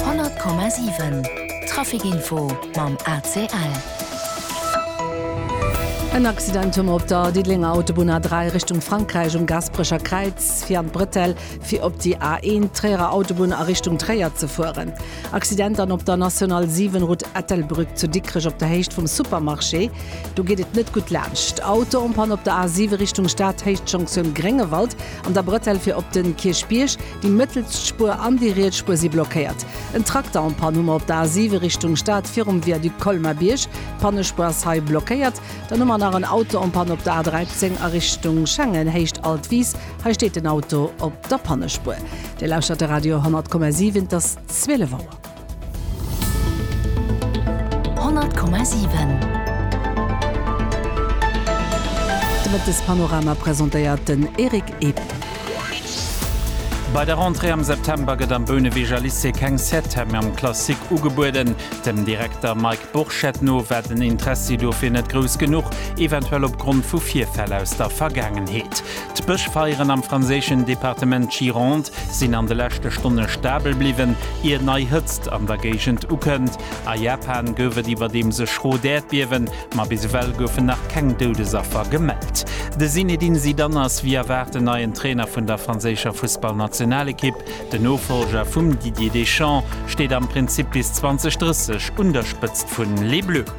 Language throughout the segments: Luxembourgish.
100,7 Traficinfo mam ACL. En Accident hu mer op der Diddelenger Autobunn A3 Richtung Frankräich um Gasperecher Kräiz, fir an d'Bretelle, fir op déi A1 Tréierer Autobunn a Richtung Tréier ze fueren. Accident dann op der National 7 Route Ettelbrueck zu Dikrech op der Héicht vum Supermarché. Do geet et net gutt laanscht. Auto-Onpann op der A7 Richtung Stad, Héichtjonktioun Gréngewald an der Bretelle fir op den Kierchbierg. Déi mëttelst Spuer an déi riets Spuer si blockéiert. En Trakter en panne um op der A7 Richtung Stad virum Viaduc Colmar-Bierg. D'Pannespuer ass hei blockéiert. Dann hu mer nach en Auto en panne op der A13 a Richtung Schengen, Héicht Altwies. Hei steet den Auto op der Pannespuer. Dir lauschtert de Radio 100,7. Et ass 12 Auer. 100,7 De Mëttespanorama presentéiert den Eric Epp. Bei der Rentrée am September gëtt am Böneweger Lycée keng Septem am Classique ugebueden. Dem Direkter Mike Burchett no war den Interessi dofir net grouss genuch, eventuell opgrond vu Virfäll aus der Vergaangenheet. D'Bëschfeieren am franséischen Departement Gironde sinn an de leschte Stonne stabel bliwwen, ier nei Hëtzt an der Géigend ukënnt. A Japan gouf et iwwerdeems e schrot Äerdbiewen, ma bis ewell goufen nach keng Doudesaffer gemellt. De Zinedine Zidane ass wéi erwaart den neien Trainer vun der franséischer Fussballnationalekipp. Den Nofollger vum Didier Deschamps steet am Prinzip bis 2030 un der Spëtzt vun Les Bleus.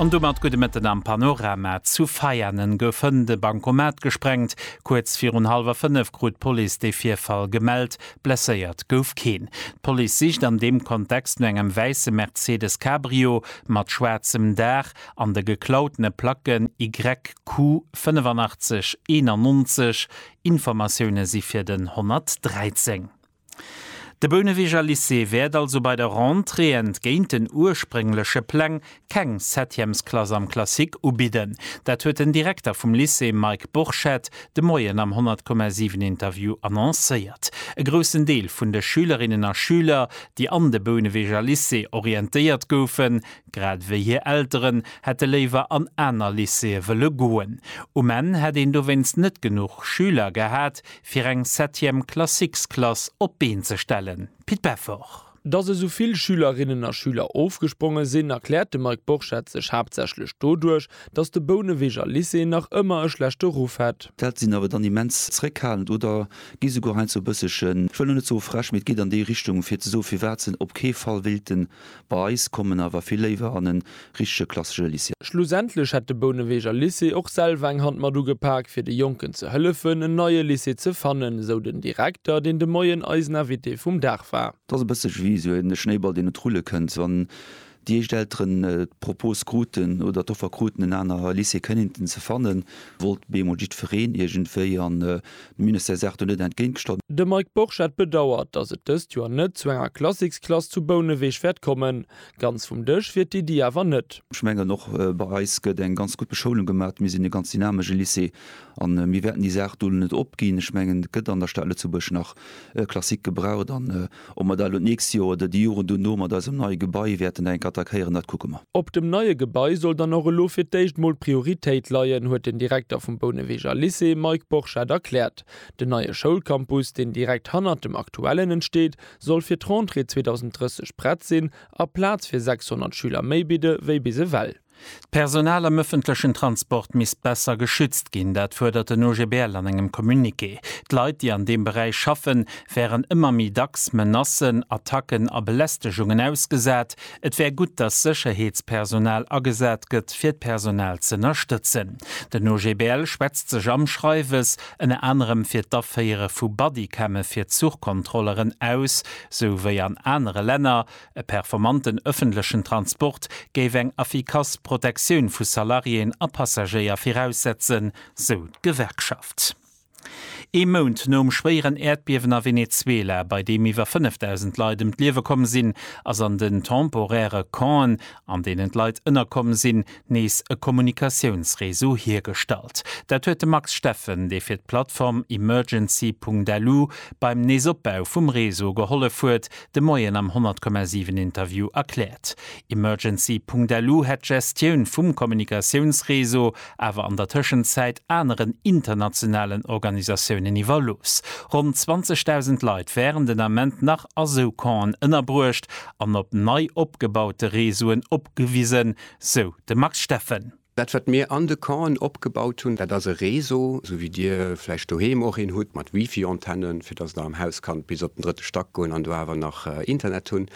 An domat gudde Mëtten am Panorama. Zu Veianen gouf hënt e Bankomat gesprengt. Kuerz virun hallwer 5 krut d'Police dee Virfall gemellt. Blesséiert gouf keen. D'Police sicht an deem Kontext no engem wäisse Mercedes Cabrio mat schwaarzem Daach an de geklautene Placken YQ 8591. Informatioune si fir den 113. De Bouneweger Lycée wäert also bei der Rentrée, entgéint den urspréngleche Pläng, keng Septièmesklass am Classique ubidden. Dat huet den Direkter vum Lycée Mike Borchert de Moien am 10,7 Interview annoncéiert. E groussen Deel vun de Schülerinnen a Schüler, déi an de Bouneweger Lycée orientéiert goufen, grad ewéi hir Elteren, hätte léiwer an aner Lycéeë wëlle goen. Um Enn hätt een dowéinst net genuch Schüler gehat, fir eng Septième Classiques-Klass op d'Been ze stellen, Pit Peffort. Datt esou vill Schülerinnen a Schüler ofgespronge sinn, erkläert de Mike Borchert sech haaptsächlech doduerch, datt de Bouneweger Lycée nach ëmmer e schlechte Ruff hätt. D'Eltere sinn awer dann immens zeréckhalend oder gi souguer heiansdo e bësselchen, ech wëll elo net soe frech, mee et geet an déi Richtung, fir ze soen, firwat se op kee Fall wéilten Bei eis koum en awer vill léiwer an en richtege klassesche Lycée. Schlussendlech hätt de Bouneweger Lycée och selwer eng Hand mat ugepak, fir de Jonken ze hëllefen, en neie Lycée ze fannen, esou den Direkter, deen de Moien eisen Invité vum Dag war. Et ass e bësse wéi esou e Schnéiball, deen un d'Rulle kënnt. Wann déi éischt Elteren d'Propos kruten oder d'Offer kruten, en aner Lycée Kennington ze fannen, wollt bemol jiddwereen iergendwéi. A De Ministère sagt do net entgéintgestallt. De Mike Borchert bedauert, datt et dëst Joer net zu enger Klassiksklass zu Bouneweg wäert kommen. Ganz vum Dësch wier d'Iddi awer net. Ech mengen och bei eis gëtt eng ganz gutt Beschoulung gemaach. Mir sinn e ganz dynamesche Lycée a mir wäerten déi Saach do net opginn. Ech mengen et gëtt an der Stad Lëtzebuerg nach Klassik gebraucht. Ob mer da elo d'nächst Joer oder déi Joren dono mat eisem neie Gebai wäerten da enk attackéieren, dat kucke mer. Op dem neie Gebai soll dann och elo fir d'éischt emol d'Prioritéit leien, huet den Direkter vum Bouneweger Lycée, Mike Borchert, erkläert. Den neie Schoulcampus, deen direkt hannert dem aktuellen entsteet, soll fir d'Rentrée 2030 prett sinn a Plaz fir 600 Schüler méi bidde wéi bis ewell. D'Personal am ëffentlechen Transport misst besser geschützt ginn, dat fuerdert den OGBL an engem Communiqué. D'Leit, déi an deem Beräich schaffen, wären ëmmer méi dacks Menacen, Attacken a Belästegungen ausgesat. Et wär gutt, datt Sécherheetspersonal agesat gëtt, fir d'Personal z'ënnerstëtzen. Den OGBL schwätzt sech am Schreiwes ënner anerem fir d'Aféiere vu Bodycamme fir Zuchkontrolleren aus, sou wéi an anere Länner. E performanten ëffentlechen Transport géif eng effikass Protektioun vu Salariéen a Passagéier viraussetzen, sou d'Gewerkschaft. Ee Mount nom schwéieren Äerdbiewen a Venezuela, bei deem iwwer 5.000 Leit ëm d'Liewe komm sinn, ass an den temporäre Campen, an deenen d'Leit ënnerkomm sinn, nees e Kommunikatiounsreseau hiergestallt. Dat huet de Max Steffen, dee fir d'Plattform Emergency Punkt Alu beim Neesopbau vum Reseau gehollef huet, De Moien am 100,7 Interview erkläert. Emergency.lu hätt d'Gestioun vum Kommunikatiounsreseau awer an der Tëschenzäit aneren internationalen Organisatiounen iwwerlooss. Ronn 20.000 Leit wären den Ament nach a sou Campen ënnerbruecht an op nei opgebaute Reseauen opgewisen, sou de Max Steffen. Dat wat mir an de Campen opgebaut hunn, dat ass e Réseau, esou wéi Dir vläicht doheem och een hutt, mat Wifi-Antennen, fir datt Der am Haus kannt bis op den drëtte Stack goen an do awer nach Internet hunn.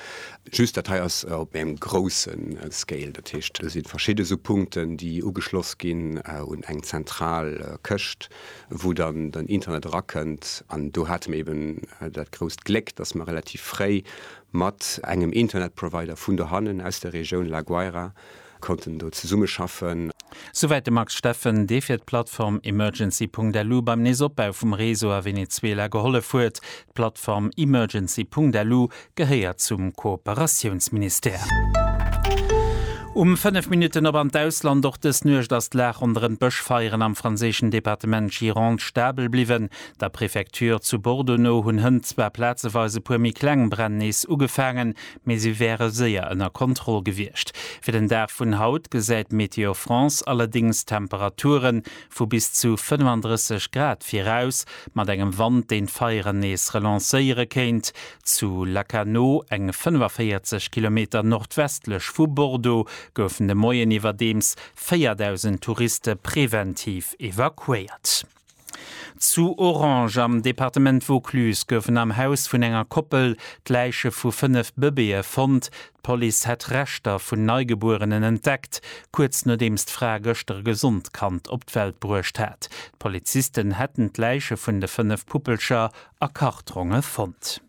Just dat hei ass op engem grousse Scale. Dat heescht, do si verschidde sou Punkten, déi ugeschloss ginn un eng zentral Këscht, wou dann den Internet erakënnt. An do hate mir eben dat grousst Gléck, datt mer relativ fréi mat engem Internetprovider vun dohannen aus der Regioun La Guaira Konnten do zesummeschaffen. Souwäit de Max Steffen, dee fir d'Plattform Emergency.lu beim nees Opbau vum Réseau a Venezuela gehollef huet. D'Plattform Emergency.lu gehéiert zum Kooperatiounsministère. Um 5 Minutten op an d'Ausland, Och dës Nuecht ass d'Lag ronderëm d'Bëschfeieren am franséischen Departement Gironde stabel bliwwen. Der Prefecture zu Bordeaux no hunn hënt zwar plazeweis e puer méi kleng Bränn nees ugefaangen, mee si wäre séier ënner Kontroll gewiescht. Fir den Dag vun haut gesäit Météo France allerdéngs Temperature vu bis zu 35 Grad viraus, mat engem Wand, deen d'Feieren nees relancéiere kéint. Zu Lacanau, eng 45 Kilometer nordwestlech vu Bordeaux, goufen de Moien iwwerdeems 4.000 Touriste preventiv evakuéiert. Zu Orange am Departement Vaucluse goufen am Haus vun enger Koppel d'Läiche vu fënnef Bëbeeë fonnt. D'Police hätt Reschter vun Neigebuerenen entdeckt, kuerz nodeems d'Fra gëschter e gesond Kand op d'Welt bruecht hat. D'Polizisten hätten d'Läiche vun de fënnef Puppelcher a Kartonge fonnt.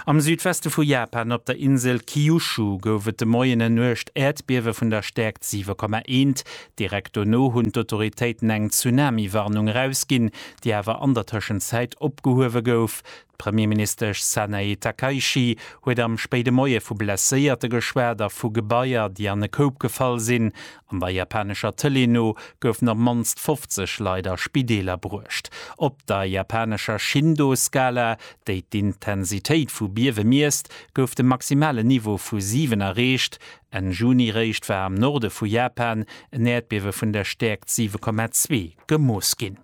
Am Südweste vu Japan, op der Insel Kyushu, gouf et de Moien en nuecht Äerdbiewe vun der Stäerkt 7,1. Direkt dono hunn d'Autoritéiten eng Tsunami-Warnung erausginn, déi awer an der Tëschenzäit opgehuewe gouf. D'Premierministesch Sanae Takaichi huet am spéide Moie vu Blesséierte geschwat a vu Gebaier, déi an e Koup gefall sinn. An der japanescher Tëlee no goufen op d'mannst 50 Leit a Spideeler bruecht. Op der japanescher Shindo-Skala, déi d'Intensitéit vu Biewe miesst, gouf de maximalen Niveau vu 7 erreecht. Enn Juni eréischt war am Norde vu Japan en Äerdbiewe vun der Stäerkt 7,2 gemooss ginn.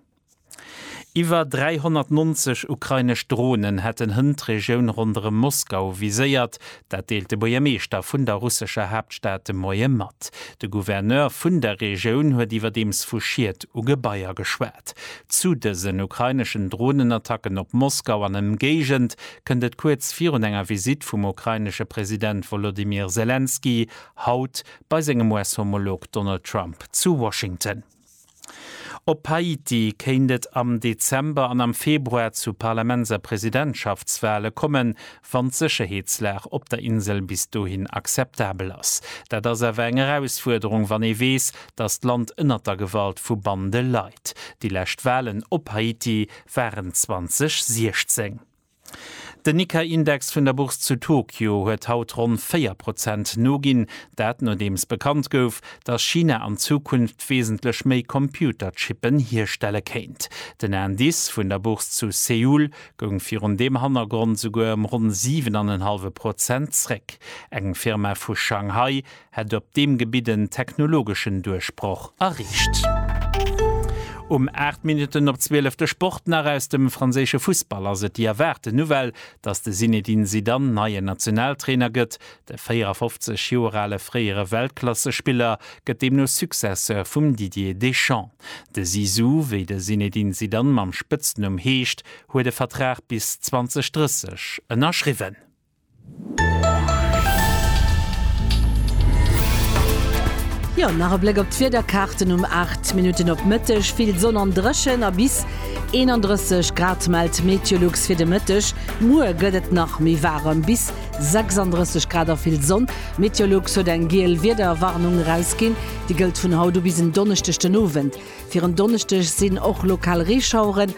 Iwwer 390 ukrainesch Dronen hätten Hënn d'Regioun ronderëm Moskau viséiert. Dat deelt de Buergermeeschter vun der russescher Haaptstad de Moie mat. De Gouverneur vun der Regioun huet iwwerdeems vu Schied u Gebaier geschwat. Zu dësen ukraineschen Dronenattacken op Moskau an Ëmgéigend kënnt et kuerz virun enger Visitt vum ukrainesche President Wolodymyr Selenskyj haut bei sengem US-Homolog Donald Trump zu Washington. Op Haiti kéint et am Dezember an am Februar zu Parlaments a Presidentschaftswale kommen, wann d'Sécherheetslag op der Insel bis dohin akzeptabel ass. Dat ass awer eng Erausfuerderung, wann ee weess, datt d'Land ënnert der Gewalt vu Bande leit. Déi lescht Walen op Haiti waren 2016. Den Nikkei-Index vun der Bourse zu Tokio huet haut ronn 4 Prozent noginn. Dat nodeems bekannt gouf, datt China an Zukunft wesentlech méi Computerchippen hierstelle kéint. Den Indice vun der Bourse zu Seoul goung virun deem Hannergrond souguer ëm ronn 7 an en hallwe Prozent zréck. Eng Firma vu Shanghai hätt op deem Gebitt en technologeschen Duerchbroch erreecht. Um 8 Minutten op 12 de Sport nach aus dem franséische Fussball ass et déi erwaarte Nouvelle, dass de Zinedine Zidane neien Nationaltrainer gëtt. De 54 Joer ale fréiere Weltklassespiller gëtt deemno Successeur vum Didier Deschamps. De Zizou, wéi de Zinedine Zidane mam Spëtznumm heescht, huet e Vertrag bis 2030 ënnerschriwwen. Jo, nach e Bléck op d'Wiederkaarten, um 8 Minutten op Mëtteg vill Sonn an dréchen a bis 31 Grad mellt d'Meteolux fir de Mëtteg. Muer gëtt et nach méi waarem, bis 36 Grad a vill Sonn. D'Meteolux huet eng giel Wiederwarnung erausginn, déi gëllt vun haut u bis en Donneschdeg den Owend. Fir en Donneschdeg sinn och lokal Reeschaueren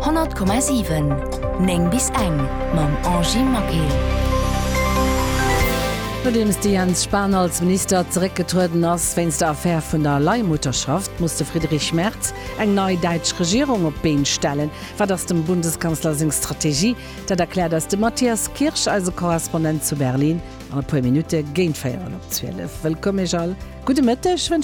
100,7 9 bis eng mam Angie Maquet. Nodeems de Jens Spahn als Minister zeréckgetrueden ass wéinst der Affär vun der Leihmutterschaft, muss de Friedrich Merz eng nei däitsch Regierung op d'Been stellen. Wat ass dem Bundeskanzler seng Strategie? Dat erkläert eis de Matthias Kirsch, eise Korrespondent zu Berlin, an e puer Minutte géint véierel op 12. Wëllkomm Iech all, gudde Mëtteg.